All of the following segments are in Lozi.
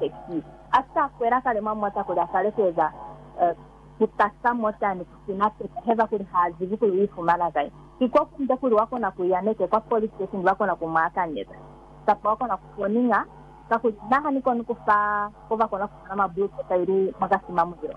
Pesi a sa kwela kale mwa mota kuli a sa lekeza ku tasa mota ni ku sina teteba kuli ha zibi kuli u ifumana kai. Ki ko kunde kuli wa kona ku ya neke kwa police station ba kona ku mu akanyeza. Kapa wa kona ku foninga, kakuli naha ni koni ku fa ko ba kona ku fumana mwa blue paper ili mwa kasi mwa mulilo.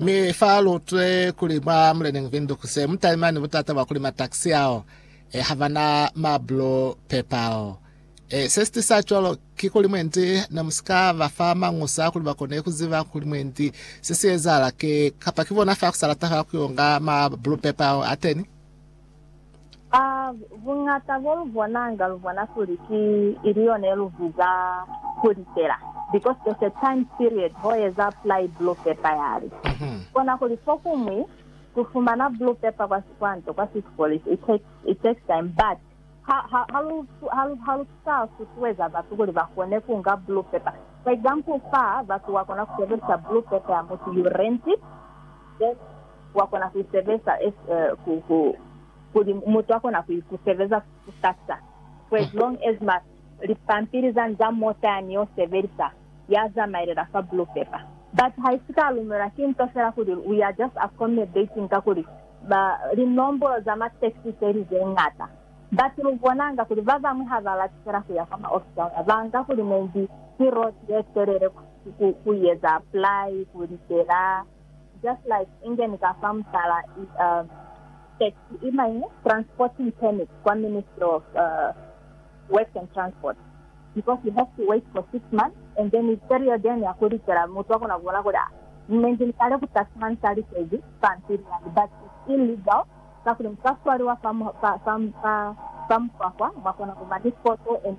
Mi fa lu utwe kuli mwa Muleneñi Windhoek se mu talimani butata bwa kuli mataxi ao e ha ba na ma blue paper ao. E, se si tisa cwalo ki kuli mwendi ne mu si ka ba fa mañusa kuli ba kone ku ziba kuli mwendi se si ezahala ki, kapa ki bona fa ku sa lata fa ku yo nga ma blue paper ao ateni. A Buñata bo lu bonanga lu bona kuli ki ili yona ye lu biza kuli fela because there's a time period ho eza apply blue paper yali kona kuli fokuñwi ku fumana blue paper kwa sikwanto kwa city police it takes it takes time but ha ha ha lu ha lu ha lu sa susueza batu kuli ba kone ku nga blue paper for example fa batu wa kona ku sebelisa blue paper ya mutu you rent it then wa kona ku isebeza as ku, ku, kuli mutu a kona ku, ku sebeza kusasa, for as long as ma, lipampili zani za mota yani yo sebelisa, ya zamailela fa blue paper. But haisi ka lumelwa ki nto fela kuli we are just accommodating kakuli ba, linombolo za ma tax se li ze ngata. But lu bonanga kuli ba bañwi ha ba lati fela ku ya kwa ma ofisi a luna, ba nga kuli maybe ki road ye telele ku, ku, ku ieza apply, ku litela. Just like ingeni ka fa mutala tax i main transporting permit kwa Ministry of Works and Transport because you have to wait for six months and then period yenu ya ku likela mutu akona ku bona kuli mne ndi likale ku tax man sa likezi pampili yani but it's illegal kakuli muka swaliwa fa fa fa fa fa mukwakwa mwa kona ku ba ni photo and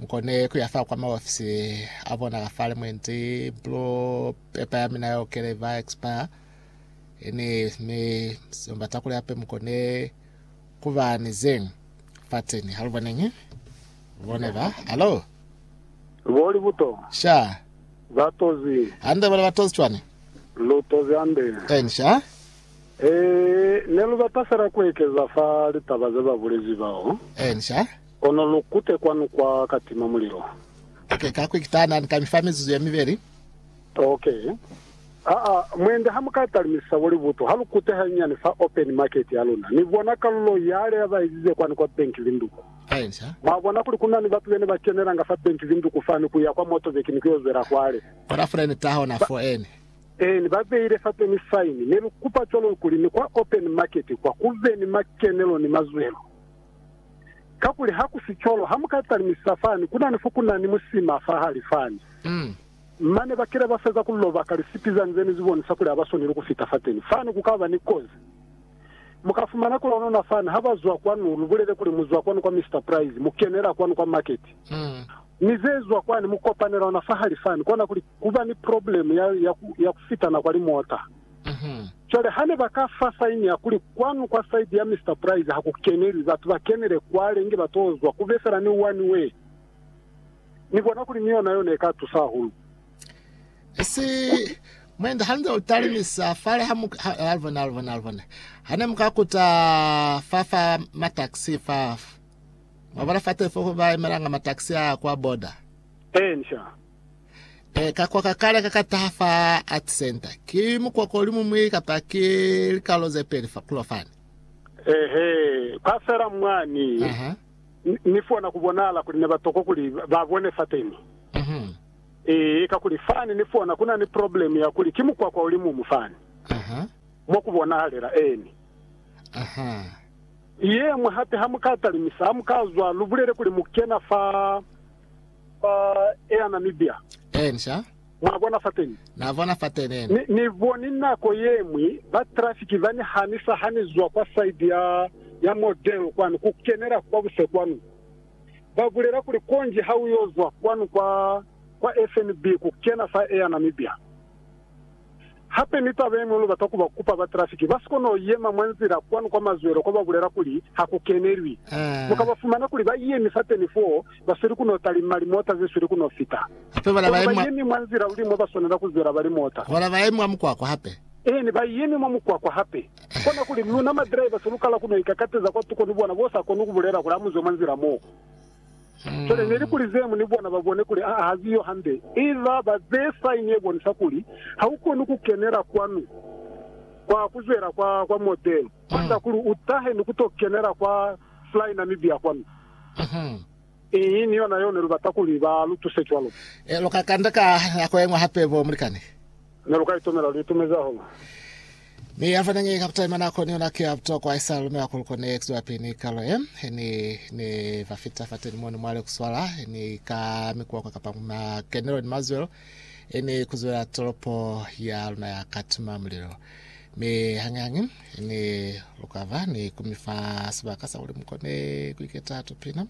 Mukone kuya fa kwa maofisi a bona ka fale mwenzi blue paper ya mina yo kele va expire ini mi semba takuli ape mukone kuba ni zeng fatseni haluboneng bone ba alo Boli buto. sha Ba tozi. hande bale batozi cwani Lu tozi hande. en sha E, ne lu bata fela ku ekeza fa litaba ze ba bulezi bao. en sha Kono lu kute kwanu kwa ka tima mulilo. Ok, ka quick tana ni ka mi fa mizuzu ye mibeli. Ok. Aa, mwende ha mu ka talumisisa bo libutu, ha lu kute hanyinyani fa open market ya luna, ni bona kalulo yale ya ba izize kwani kwa Bank Vinduku. Hainzha. Mwa bona kuli ku na ni batu bene ba kenelanga fa Bank Vinduku fani ku ya kwa Motorbike ni ku yo zwela kwale. Bona fule ni taha ona fo ene. Eeni, ba beile fa peni sign. Ne lu kupa cwalo kuli ni kwa open market kwa ku be ni makenelo ni mazwelo. Kakuli ha ku si cwalo, ha mu ka talimisa fani, ku na ni fo ku na ni musima fahali fani. Mane ba kile ba feza ku loba ka lisipi za nzeni zi bonisa kuli ha ba swaneli ku fita fateni. Fani ku ka ba ni kozi. Mu ka fumana ku lonona fani ha ba zwa kwanu, lu bulele kuli mu zwa kwanu kwa Mister Price, mu kenela kwanu kwa market, ni ze zwa kwani, mu kopanela ona fahali fani. Kona kuli ku ba ni probleme ya, ya ku, ya ku fitana kwa limota. Cwale hane ba ka fa saini ya kuli kwanu kwa side ya Mister Price ha ku kenelwi, batu ba kenele kwale inge ba to zwa ku be fela ni one way. Ni bona kuli ni yona yo ne ka tusa hahulu. Esi, Mwenda, ha nze u talimisa fale ha mu, ha, alibone, alibone, alibone, hane mu ka kuta fa, fa ma taxi fa, mwa bona fa telefoko ba emelanga ma taxi a kwa border. Eeni, sha. E, ka kwa ka kale ka ka taha fa Art Center. Ki mukwako o li mumwi kapa ki likalolo ze peli fa kulo fani? Eehe, kwa fela mwani. Aha. Ni, ni fona ku bonahala kuli ne ba tokwa kuli ba bone fateni. Mhm. Ee, kakuli fani ni fona ku na ni problemu ya kuli ki mukwakwa o li mumu fani. Aha. Mwa ku bonahalela. Eeni. Aha. Yee, mwa hape ha mu ka talimisa, ha mu ka zwa, lu bulele kuli mu kena fa. Ba eya Namibia. Eeni, sha. Mwa bona fateni? Na bona fateni, eeni. Ni, Ni boni nako yemwi ba trafiki ba ni hanisa ha Ni zwa kwa side ya, ya Model kwanu ku kenela kwa buse kwanu. Ba bulela kuli, Konji ha u yo zwa kwanu kwa, kwa FNB ku kena fa Air Namibia. Hape ni taba yeñwi lu bata ku ba kupa ba trafiki ba si kone ku yema mwa nzila kwanu kwa mazwelo kwa ba bulela kuli ha ku kenelwi. Mu ka ba fumana kuli ba yemi fateni foo, ba sweli ku no talima limota ze sweli ku no fita. Kono ba yemi mwa nzila luli mo ba swanela ku zwela ba limota. Eeni, ba yemi mwa mukwakwa hape. Kona kuli, luna madriver se lu kala ku no ikakateza kwatuko ni bona bo sa koni ku bulela kuli, Amuzwe mwa nzila moo. Cwale ne li kuli zemu ni bona ba bone kuli aa ha ziyo hande, i ba ba bee saini ye bonisa kuli ha u koni ku kenela kwanu kwa ku zwela kwa, kwa model, kwanda kuli u tahe ni ku to kenela kwa Fly Namibia kwanu. Iñi ni yona yeo ne lu bata kuli ba lu tuse cwalo. Lu ka kanda ka nako ye ñwi hape, bo mulikani. Ne lu ka itumela lu itumezi hahulu. Mi ya fane nge kaputaima na koni yona ki ya butokwa isala lumela kuli kone ya ekiziwa pili ni kalo ye. Ni ne ba fita fateni mo ni mwali ku swala ni ka mikwakwa kapa ku makenelo ni mazwelo ni ku zwela tolopo ya luna ya ka tima mulilo. Mi hangi hangi ni lu ka ba ni ku mi fa sibaka sa kuli mu kone ku iketa tupina.